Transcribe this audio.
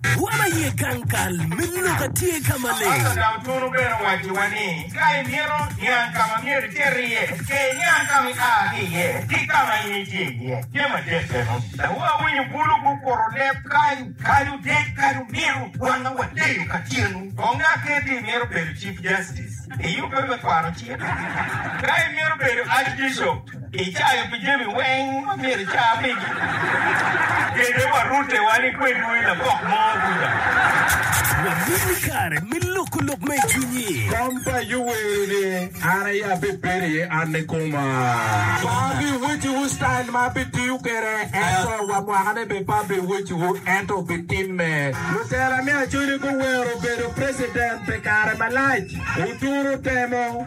Dwam aye gang kal me lok a tye ka maleng. Pastor Dam Tunu bene owacci wa ni ka i mito niang ka ma myero iter iye, cer iniang ka ma i a ki iye ki ka ma in itye iye. Tye madit bene. Dawu awinyo bulu gukuro leb kany. Kadu dek kadu nino wan wa deyo ka tyenu. Konge aketi i mito bedo Chief Justice. Iyubbe me kwano cik? Ka i mito bedo Archbishop? Icayo pi jami weng ma myero ica pigi. Kete wa rute wan i kwedwu i lapok mo kuca. Wabino i kare me loko lok ma i cwinyi. Kom pa Ayub wero ni, An aye abibedo iye, an ni koma. Abiweciwu style ma abitiyo kwede, ento wa mwakane bene pe abiweciwu, ento obitimme. Lutela me Acholi guwero bedo president pi kare malac. Oturo temo.